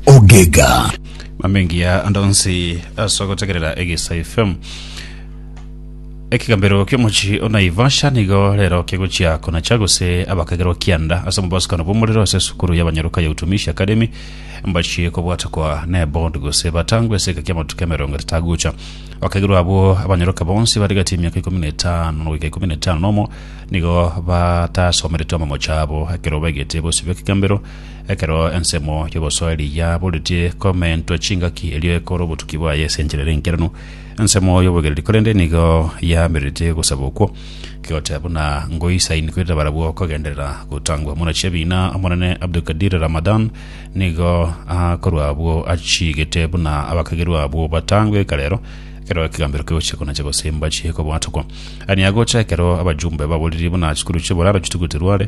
ogega mamengia ande onsi ase ogotegerera egesa fm ekigambero kiomochi onaivasha nigo rero kegochia konacha gose abakagerwa kianda ase omobasikano bw'omorero ase esukuru y'abanyaruka ya utumishi academy mbachie kobwatakwa nebod gose batangwe ase eka kiamatuko emerongo etatu agocha abakagerwa abwo abanyaruka bonsi bari gati emiaka ikomi na etano goika ikomi na etano nomo nigo batasomerete amamocha abo ekero baigete bosibwa ekigambero Ekero ensemo y'obosoeri yaboretie komentwa chingaki, erio ekora obotuki bwaye ase enchera ere enkeranu, ensemo y'obogereri, korende nigo yamerete gosaba okwo, kegoteba buna ngoisaini korende barabwo kogenderera gotangwa. Omwana chi'ebiina Omonene Abdulkadir Ramadan nigo akorwa abwo achiigete buna abakagerwa abwo batangwe ekare ero, ekero ekegambero kegochia konacha gose mbache kobwatokwa. Ani agocha ekero abajumbe baboririe buna chikuru chi'eboraro chitugutwe rware,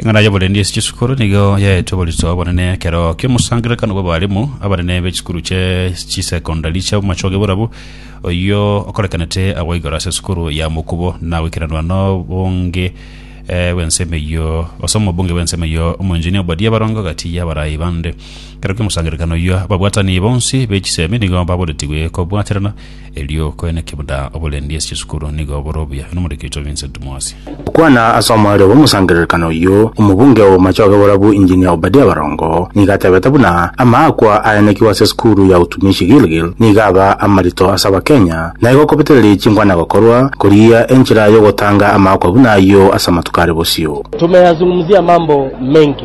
Eng'ana y'oborendi ase chisukuru nigo yaetwe oboritwa obonene ekero ki'omosangererekano bw'abarimu abanene be chisukuru chie chisecondary chia Machoge Borabu, oyio okorekanete agwo igoro ase esukuru ya Mokubo na goikeranwa n'obonge eh, bw'ensemo eyio gose omobunge bw'ensemo eyio Omoenginia Obadia Barongo gati y'abarai bande. Ekero ki'omosangererekano oyio ababwatani bonsi be chisemi nigo baboretigwe kobwaterana Erio koene kibuda oborendi ase chisukuru nigo bore obuya nomoriki oito Vincent Mwasi. Okwana ase omorero bw'omosangererekano oyio, omobunge o Machoge Borabu Engineer Obadia Barongo nigo atebete buna amaakwa ayanekigwe ase esukuru ya Utumishi Gilgil nigo aba amarito ase abakenya na igo kobetereria chinkwana gokorwa korigia enchera yogotanga amaakwa buna ayio ase amatuko are bosio. Tumeyazungumzia mambo mengi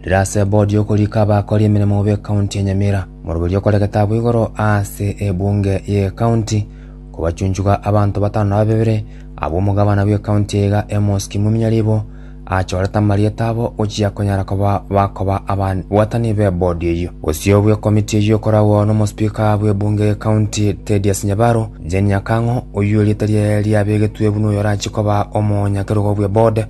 Rire ase ebodi y'okorika abakori emeremo b'ekaunti ya Nyamira, moroberi okore getaabo igoro ase ebunge y'ekaunti, kobachunchuga abanto batano na babere, abwo omogabana bw'ekaunti eye iga Amos Kimuminya Ribo achorete amarieta abo gochia konyara koba bakoba ababwatani b'ebodi eyio. Bosio bw'ekomiti eyio ekoragwo n'omosipika bw'ebunge y'ekaunti Tedious Nyabaro, Jane Nyakang'o, oyio erieta riaye riabegetwe buna oyorachie koba omonyakerogo bw'ebode,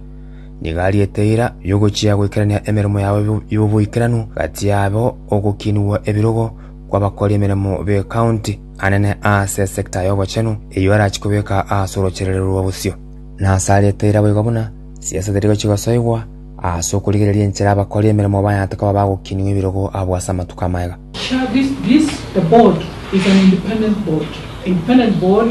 Nigo ariete eira y'ogochia goikerania emeremo yabo y'oboikeranu gati yabo ogokinigwa ebirogo kw'abakori emeremo b'ekaunti, anene ase esekta y'obochenu, eyio arachie kobeka ase orochererero rwa bosio. Na ase ariete eira boigo buna siasa teri gochia gosoigwa ase okorigereria enchera abakori emeremo bayaate koba bagokinigwa ebirogo abwo ase amatuko amaya. Share this this The board is an independent board independent board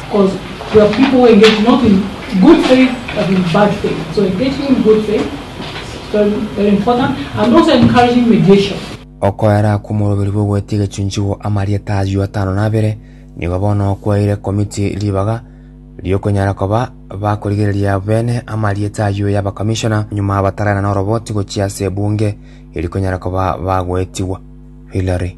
Okoera akwo omoroberi bw'ogwete egechunchigwa amarieta ayio atano na abere nigo bono okwaeire Committee ribaga ri'okonyara koba bakorigereria abo bene amarieta ayio yaba Commissioner nyuma bataraina noroboti gochia ase Ebunge erikonyara koba bagoetigwa. Hillary.